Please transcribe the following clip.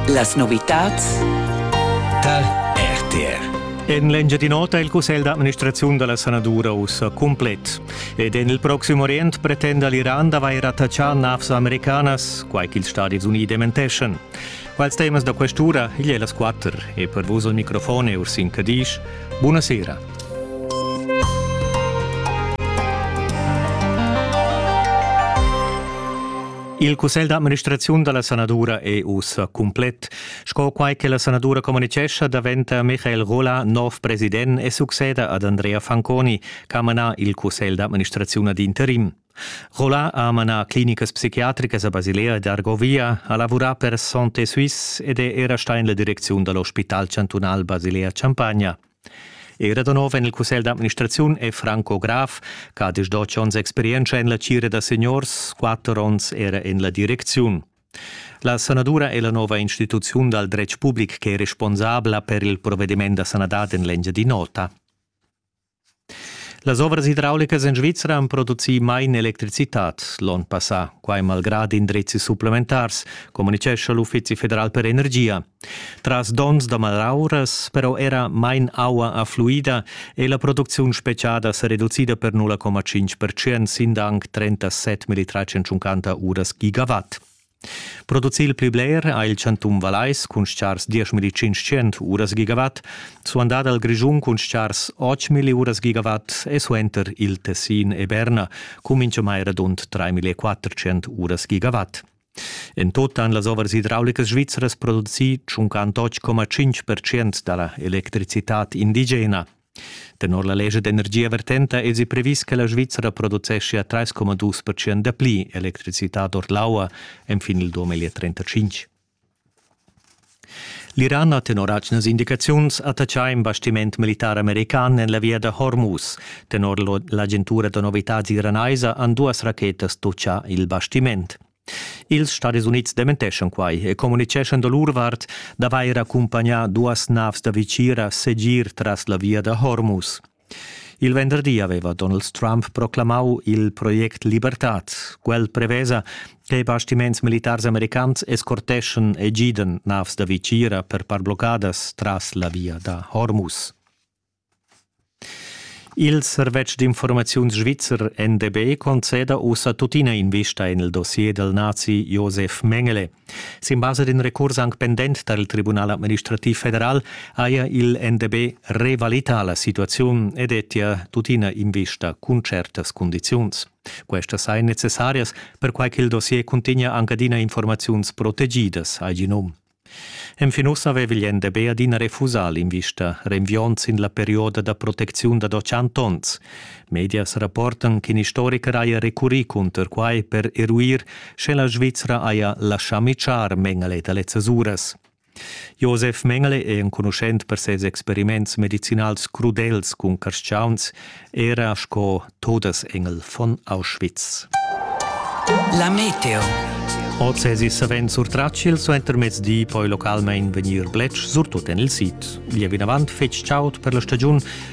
Las novitads tal RTR. En l'Engiadin'Ota è il cussegl d'administrazione della sanadura ussa complet ed en il prossimo Orient pretende l'Iran d'avair attachà navs americanas, quai ch'ils Stati Uniti dementeschan. Quals temas da questura igl è las quatter e per vos al microfon è Ursin Cadisch. Buonasera. Il cussegl d'administraziun da la sanadura è ussa cumplet. Sco quai che la sanadura communitgescha daventa Michael Rola nov president e succeda ad Andrea Fanconi ch'ha manà il cussegl d'administraziun ad interim. Rola ha manà clinicas psichiatricas a Basilea ed Argovia, ha lavurà per Santé Suisse ed è era stà en la direcziun da l'ospital chantunal Basilea-Champagna. Era da nov en il cussegl d'administraziun è Franco Graf, che ha disdotg onns experientscha en la tgira da seniors, quatter onns era en la direcziun. La sanadura è la nova instituziun dal dretg public che è responsabla per il provediment da sanadad en l'Engiadin'Ota. Las ovras idraulicas en Svizra han producì mai electricitad l'onn passà, quai malgrad indrizis supplementars, communitgescha l'Uffizi federal per energia. Tras donns da malauras però era main aua affluida è la producziun spetgada sa reducida per 0,5% sin anc 37 1350 uras gigawatt. Producir il pli bler ha il chantun Valais cun stgars 10.500 uras gigawatt, suandà dal Grischun cun stgars 8.000 uras gigawatt e suenter il Tessin e Berna cun mintgamai radund 3.400 uras gigawatt. En tut han las ovras idraulicas svizras producì tschunquant 8,5% da la electricitad indigena. Tenor la legge d'energia vertenta èsi previs che la Svizra produceschia 3,2% dapli electricitad ord l'aua enfin il 2035. L'Iran ha tenor atgnas indicaziuns attatgà in bastiment militar american en la via da Hormuz. Tenor l'agentura da novitads iranaisa han duas rachetas tutgà il bastiment. Ils Stadis Unids dementeschan quai e communiceschan da lur vart d'avair accumpagnà duas navs da vitgira segir tras la via da Hormuz. Il venderdi aveva Donald Trump proclamau il project Libertad. Quel prevesa, che bastiments militars americans escorteschan e gidan navs da vitgira per par bloccadas tras la via da Hormuz. Il servetsch d'informaziun svizzer NDB conceda ussa tuttina invista en il dossier del nazi Josef Mengele. Sin basa d'in recurs anc pendent tar il Tribunal administrativ federal haja il NDB revalità la situaziun e dettia tuttina invista cun certas cundiziuns. Questas sajan necessarias, perquai ch'il dossier cuntegna anc adina informaziuns protegidas, ha gì num. Enfin uss aveva il NDB adina refusà l'invista, renviond sin la perioda da protecziun da doc onns. Medias rapportan ch'in istoricher haja recurrì cunter quai per eruir, sche la Svizra haja laschà mitschar Mengele da lezzas uras. Josef Mengele è enconuschent per ses experiments medicinals crudels cun carstgauns, era sco Todesengel von Auschwitz. La meteo. Oz èsi savens surtratg il suentermezdi, poi localmain vegnir bletsch, surtut en il sid. Lieu vinavant fetg chaud per la stagiun